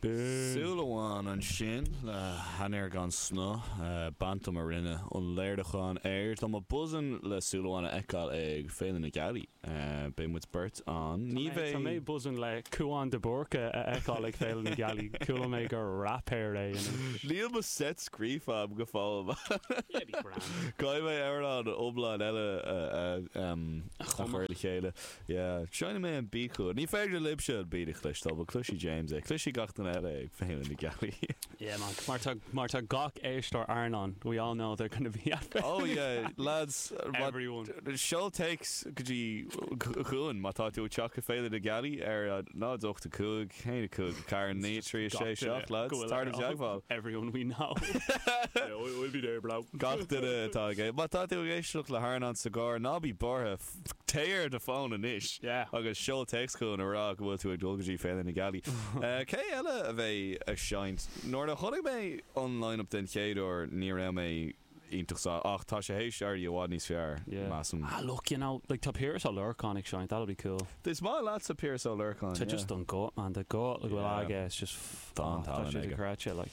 Súil amháin ansin le hainnir gan snáth. Bantam a rinne an léiriúchán air. Tá mé buzzing le Súil Amháin a fheiceáil ag Féile na Gealaí. Beidh muid beirt ann. Ní bheidh. Tá mé buzzing le Cúán de Búrca a fheiceáil ag Féile na Gealaí. Chuala mé gur raipéir é anois. Níl mo set scríofa agam go fóill. Yeah, be grand. Caithfidh mé amhrán iomlán eile a chur le chéile. Yeah, seinneann mé an bpícóid. Ní féidir libhse an beat a chloisteáil, but cloisfidh James é, cloisfidh gach duine eile é ag féile na gealaí. Yeah man, mar tá, mar tá gach éisteoir airneáin, we all know they're gonna be at féile na gealaí. Oh yeah, lads, mar, seol téacs go dtí, chugainn má tá tú ag teacht go féile na gealaí ar a 0, 8, 5, 1, 5, 4, 9, 3, 6, 7 lads, tar i dteagmháil. Everyone we know. Yeah, we'll be there bro. Gach duine atá ag, má tá tú ag éisteacht le hairneán sa gcarr, ná bí buartha. Téigh ar do fhón anois agus seol téacs chugainn a rá go bhfuil tú ag dul go dtí Féile na Gealaí. Cé eile a bheidh ag seinnt? Nuair a chonaic mé an line-up den chéad uair ní raibh mé iontach sásta, ach tá sé théis éirí i bhfad níos fearr, measaim. Ah look, you know, like tá Piaras Ó Lorcáin ag seinnt, that'll be cool. Is maith leatsa Piaras Ó Lorcáin, yeah. Tá just an guth, man, tá guth leochaileach aige, it's just, tá sé cráite, like.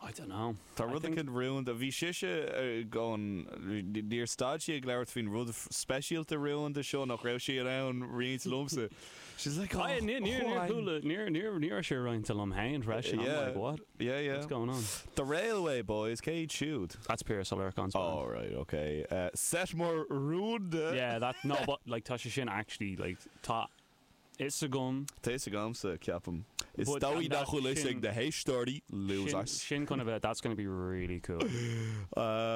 I don't know. Tá I rud think. éicint rúnda. Bhí sise ag an, níor stad sí ag labhairt faoin rud speisialta rúnda seo nach raibh sé in ann roinnt liomsa. She's like, Ah, yeah, níor, níor, níor chuala, níor, níor, níor raibh sé roinnte liom féin freisin. I'm yeah, like, what? Yeah, yeah. What's going on? The Railway Boys, cé iad siúd? That's Piaras Ó Lorcáin's band. Oh, right, okay. Uh, set mór rúnda. Yeah, that, no, but, like, tá sé sin actually, like, tá, fhios agam. Tá fhios agamsa, ceapaim. Is But dóigh nach bhfuil fhios ag na héisteoirí, losers. Sin chun a bheith that's gonna be really cool.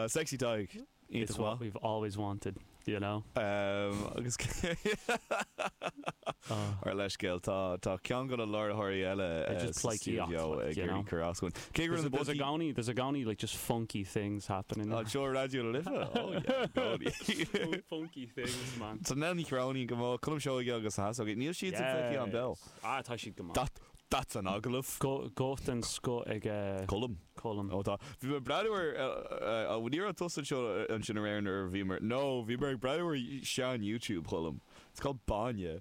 Sexy Tadhg, iontach maith. It's what we've always wanted, you know? Agus ár leithscéal, tá ceann de na láithreoirí eile sa stiúideo ag iarraidh cur as dúinn. Cé gur There's i gcónaí, there's i gcónaí like just funky things happen in Raidió na Life? Oh yeah, i gcónaí. Funky things man. Tá Nell Ní Chróinín go mall, Colm Seoige agus Na hEasógaí. Níl siad sa bhfíseán beo. Yes! Ah, tá siad go maith. That, that's an agallamh. Go, go den scoth ag Colm. Colm. Ó tá. Bhí mé ag breathnú ar, á ní raibh tusa anseo ansin aréir nuair a bhíomar, no, bhíomar ag breathnú ar shean-YouTube Cholm. It's called Báine.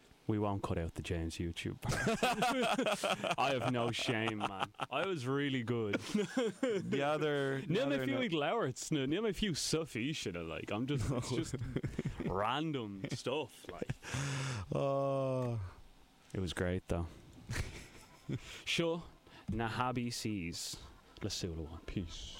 we won't cut out the James YouTube part. I have no shame man. I was really good. N'fheadar, Níl mé n'fheadar fiú na- ag labhairt sna, níl mé fiú sa físeanna like I'm just, it's just random stuff like. Oh. It was great though. Seo na hAibítéiseas le Súil Amháin. Peace.